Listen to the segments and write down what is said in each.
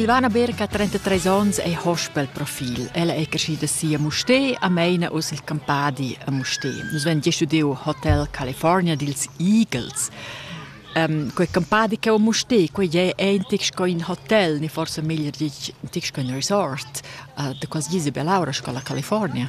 Silvana Berg ha 33 onns e hospelprofil. Ella è crescida sia Musté a Meina us il Campadi a Musté. Nus vegn giu Hotel California dils Eagles. Um, quei campadi che o Musté, quei è eintig sco in hotel, ni forse meglio dich, ein resort uh, de quasi Isabel Laura sco la California.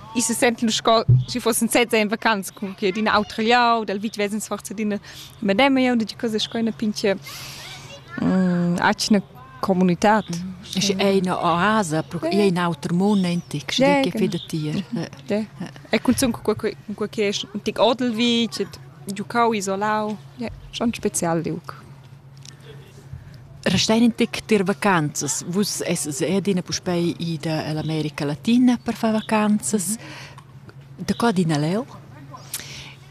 I se sentel sco schi fossen sezza in vacanz cum che d'in autra liau, dal vit vesens forza d'ina mademma jau dici cosa sco ina pinche mm, atgna comunitad. Mm. Schi è ina oasa, è in auter mund entic, schi dici che da ti. E cunzun cu quel che è un tic odel vit, giucau isolau, schon spezial liuc. Restein in tic tier vacanzas. Vus essas adina puspei ida ell'America Latina per far vacanzas. Da qua adina leu?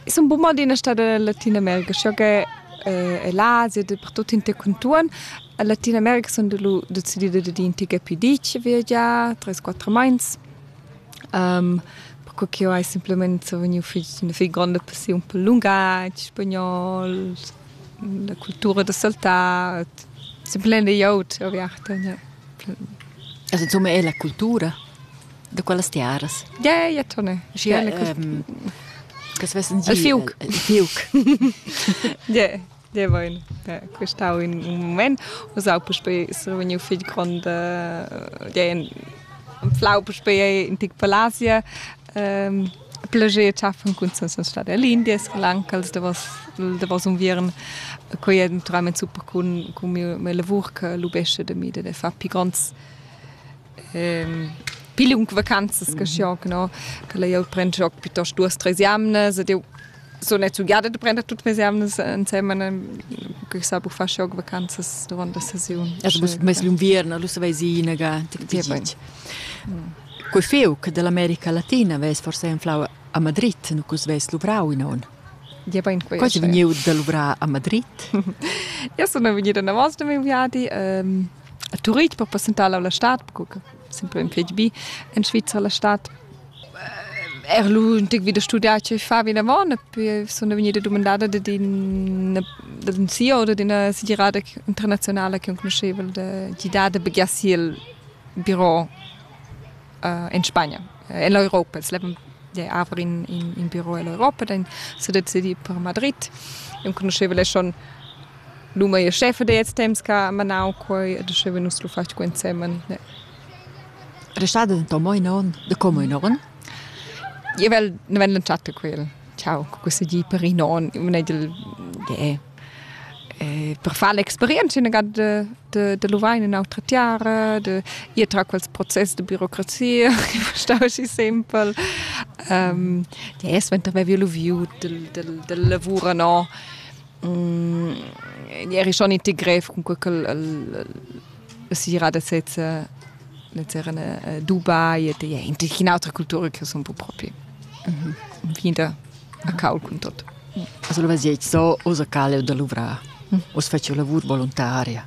I sun bun adina stada en Latinamerca, sco che eh, l'Asia, dapertut inter contuorn. En Latinamerca sun lu decidida dad ir in tic pi ditg a viagiar, tres quatter meins. Um, perque ch'jeu hai semplament vegniu fich, üna fich gronda passiun pel lungatg, spagnol, la cultura da saltar simplein da glieud aviarta ja. Also insomma è la cultura da quellas tiaras. Ja, ja, Tone. Ja, ähm, das wissen Sie. Il fiuc. Il fiuc. Ja, ja, vain. Quest'au in un moment. Usau puspei survegniu figl grond ja, in flau puspei in tic palasia. Ähm, Plager tschaffen cun senza star da l'India, Sri Lanka, da was da was un viern quei è naturalmente super con con mio mio lavor che lubesce de mi de far pi gronds ehm pile un vacanzas che xiog no che la jau pren xiog piuttost duas tres jamnas ed eu so nezzugada da prender tut mes evnas ensemen che sa bu far shock vacanzas durant la sesiun. Also bus mes l'inviern, lu savais inaga Quei feu che dall'America Latina vess forse inflau a Madrid, nu cus vess luvrau in on. Ja bain quei. Quasi vegniu da luvrar a Madrid. Ja sono vegnida in avance da miei viadi ehm, a Turitg per passentare la stad, perché sempre in PHB in Svizzera la stad Er lu ün tic vi da studiar che fa vinavon e poi sun vegnida dumandada dad ün dad ün CEO oder d'üna segirada internazionala che conusceva da gidar da begiar si il biro in Spagna, en l'Europa. Els levan haver in in in biro ell'Europa, dann s'ha decidì per Madrid. Eu conoscheva lei schon l'uma e scheffa da ils temps ch'ha manau quei ed uschè vegnus lu fatg qua insemen. Restada denton mo in onn, da como in onn. Io vel nu vegn lantschà quel. Ciao, co cussa di per in onn. Eu mun edel ie. per far l'experienza üna ga da da da luvair in ün'autra tiara, da ir tra quels process da birocrazia, stau aschi simpel. Ie suenter avevi luviu dal dal dal lavur no. eri schon iti grev cun sera da sezza era Dubai et ja in in autra cultura che son po propi vinda a caul cun tot. Also lo vasiet so osa cale da luvrar. Os facio lavur volontaria.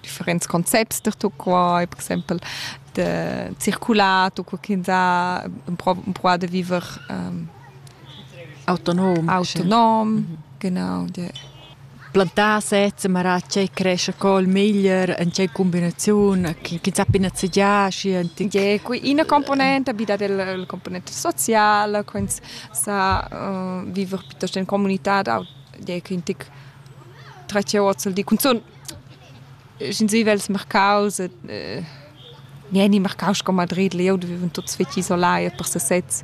differents concepts da tutto qua e per exempel de circulato co ch'ins ha empruà de viver um, autonom autonom sì. Mhm. genau de plantar sezza marà c'è cresce col miglior en c'è combinazione che chi sa pina zegia scienti je qui una componente abita del componente sociale quins sa uh, viver piuttosto in comunità da je che intic tracce ozel di cun sensibels mercaus et eh, nieni mercaus sco Madrid leu viven tuts fetg isolai per sesez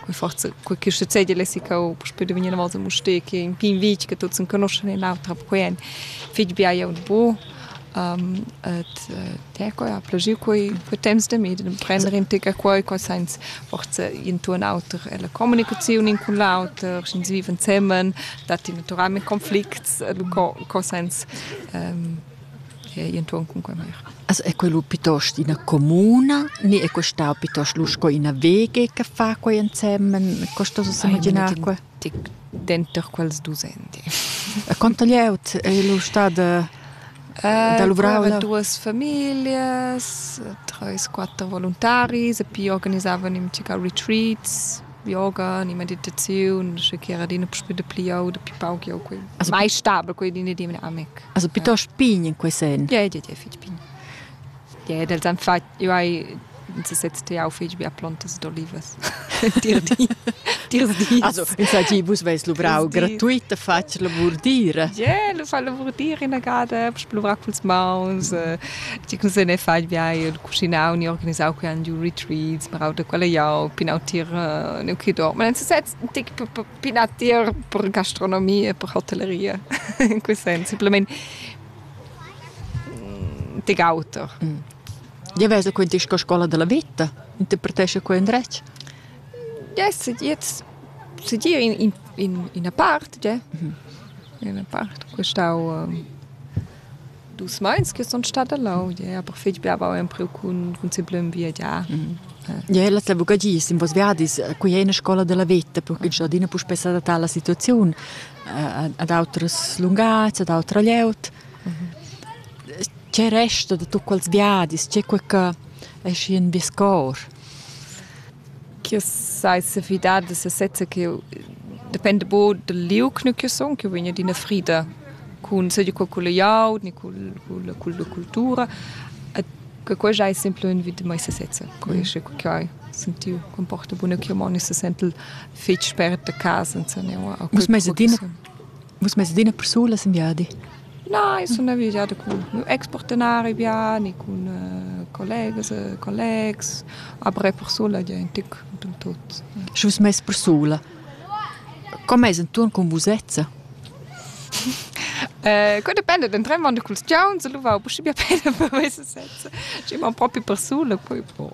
quei forza quei che succede le sica o poi da venire volta muste che in pin vic che tuts conoscono in l'altra per quien fitch bia ja und bo um, et teco ja plagiu quei quei temps de med prendere in tica quei quei sens forza intuon auter e la comunicazione in con l'auter sind sie viven zusammen dat naturalmente konflikt co sens enton cun quei meir. Also è quello piuttosto ina comuna, ni è questo piuttosto lu sco ina wege che fa quei insieme? Questo so immaginare qua? Denter quels dusendi. Quanto lieut è lu stada eh, da luvrar? Duas familias, treis, quattro voluntaris e poi organizavano im retreats yoga ni meditaziun sche che era adina puspè dapli jau dapi pauc jau quei also, mai stabel quei din di mine amic also piuttosto pign in quei sen ja ja ja fitg pign ja dels han fat io hai si setzt ja fitg bia plontas d'olivas dir di dir di also in saggi vus veis luvrau gratuita fatg lavur dira ja lu fa lavur dir ina gada puspè luvrar culs mauns ti cun se ne fai bia cucinau ni organisau quei giu retreats, marau da quella jau, pinau tier uh, neu chidor. Ma sez tic pinar tier per gastronomia e per hotelleria. in quel senso, simplement tic auter. Mm. Ja vesa quei disco scola della vita, interpretesce quei indretg. Yes, jetzt se dir in, in, in una parte, ja. Mhm. In una parte, questau uh, Dus mais che sun stada leu, ie aber fich bia avau empriu cun cun simplem viagiar. Ie las lavourgagias in vos viadis, quei ei ina scola della veta, perché già adina puspei s'adattà alla situaziun, ad autras lunghezza, ad autra glieud. Tgei resta da tut quels viadis? Tgei quei che esci in vies cor? ch'io sai sefidar da sesezza ch'io dependa bo dal liug nu ch'io sun, ch'io vegn adina frida cun seigi cul cul glieud ni cul cul culla cultura. E che quei ais sempre ün vit da mei sesezza. Quei es che ho sentiu ch'am porta buna chiamon e se sentel fetg spert a casa insomma. Vus meis adina vus meis adina persulas in viadi? Na, i sun avisà cun lur expartenari viani, cun collegas e collegs, après persula gia ün tic cunter tuot. Schi vus mess persula. Co m'es intuorn cun vusezza? Que dependa dentramont da culs giauns, alura ho pusche bia pena per mesa sezza. Schi man propi persula, poi pro.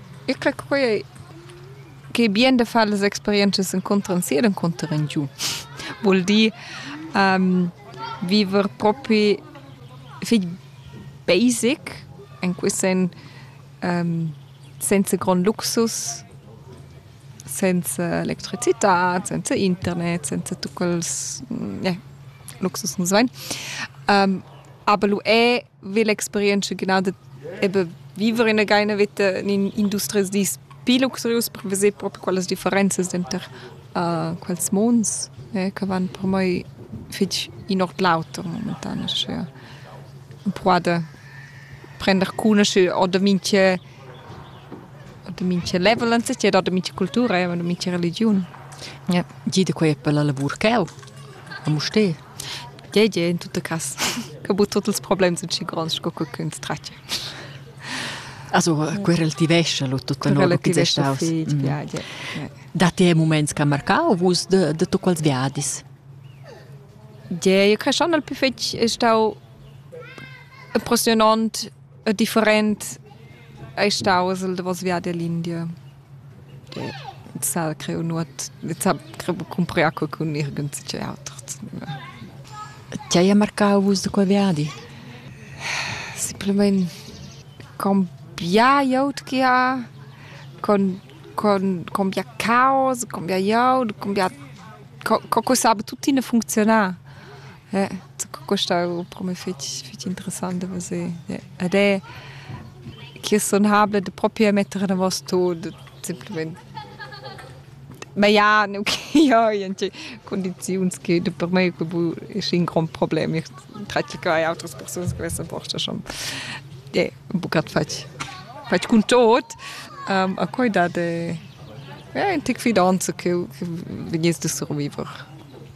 Eu crac quai ch'ei bien da far las experientschas encunter sia ed encunter in giu. Vul dir viver propi fich basic, in quist sen senza grond luxus, senza electricità, senza internet, senza tuot quels luxus nu's vain. Aber lu è Vel experientscha gnanca ebe viver ina gaina veta in industrias dis pli luxurius per veser propi quellas differenzas denter uh, quels monds eh, che van per mei fetg in ord l'auter momentan aschia empruada prender cunoscere oder minche oder minche level anzeiger oder minche cultura oder minche religion ja. Gide quei per la lavur cheu a Mustè Tgei gie in tutta cass che bu tut ils problems sun schi gronds sco co ch'ins tratga. Also querel ti vescia lo tutta nova chi staus. Datti è moments che marcau vus de de tu quals viadis? Gie, io creschan al più fetg stau impressionant E different ei staus il davos viadi all'India. Ed s'ha creu nuot, s'ha creu cumprar qualcun nirgend zichei auter. Ti hai marcau vus da quei viadi? Simplamain con bia glieud che ha, con, con, con bia caos, con bia glieud, con bia, co, co sape tuttina funcziunar. Ja, questa ho propi fich fich interessant da veser. Ja. Ed è chi es sunabel da propi metter enavos tut simplamaing. Ma ja, no ch'io ho gnanche cundiziuns che da per me que voul esser ün grond problem. Ich tracci che hai autras persunas che vessan posta schon ja, ün buccat fatg fatg cun tot. Um, a quai dat ja ün tic fidanza che che vegniss da surviver.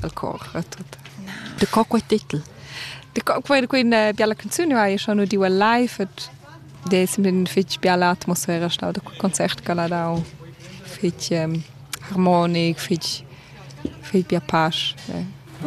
dal cor tut. Daco quei titel? Daco quei quella biala canzun vai schon nu diu live et de simplin fich biala atmosfera stau da concert che l'ha dau fich harmonic, fich fich bia pasch. Eh.